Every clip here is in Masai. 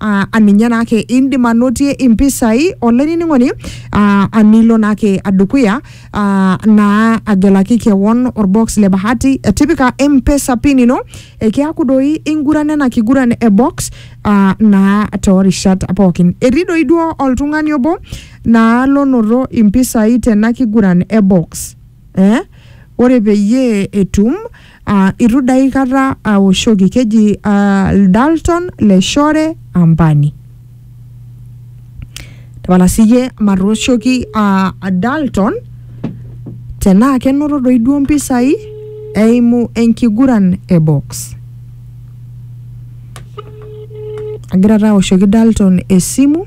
aa aninye naake indim anotie impisai olainining'oni aa anilo naake adukuya aa naa agelaki kewon orbox le bahati eh, tipika mpesa pin ino ekiaku doi inguran ena kiguran e box aa naa toorishat pookin etii doi duo oltung'ani obo naa lonoto impisai tena kiguran e box eh? ore peyie etum Uh, itu daikata aoshoki keji uh, Dalton Leshore Ambani. Tapala siyie matooshoki uh, Dalton tenaa kenoto doi duo mpisai eimu enkiguran e box. Agira taa aoshoki Dalton esimu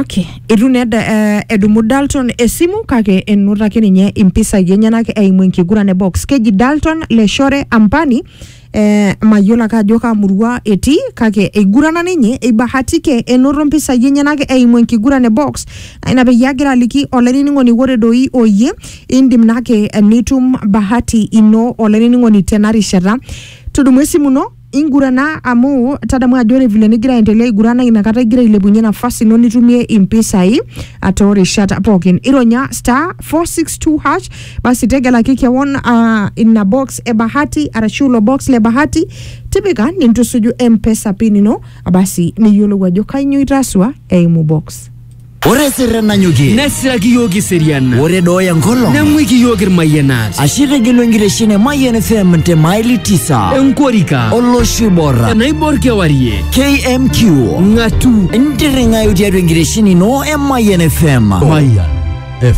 Okay. Eitu naa eda- eh, edumu Dalton esimu kake enoto ake ninye impisai enyenak eimu enkiguran e box. Keji Dalton Leshore Ampani eh, mayiolo ake ajo kaa murua etii kake eigurana ninye eibahatike enoto mpisai enyenak eimu enkiguran e box. Naa ina peyie agira aliki olainining'oni ore doi oyie indim naake nitum bahati ino olainining'oni tena rishata. Tudumu esimu ino Ingurana amu tadamu ajo ore vile nigira aendelea aigurana inakata igira ailepunye nafasi ino nitumie impisai ah, toorishat pookin. Ironya star 462 hash basi tegelaki kewon ah, ina box e bahati arashu ilo box le bahati tipika nintusuju M-Pesa pin ino basi niyiolou ajo kainyoo itasua eimu box. Ore sirre nanyokie. Nesiraki iyiook iserian. Ore dooya nkolong. Neng'uiki iyiook irmayianat. Ashe itegelu enkitesheni e Mayian FM te maili tisa. Enkorika. Olosho oibor. Enaibor kewarie. KMQ. Ng'atu. Ntirring'ayu tiatua enkitesheni ino e Mayian FM. Mayian.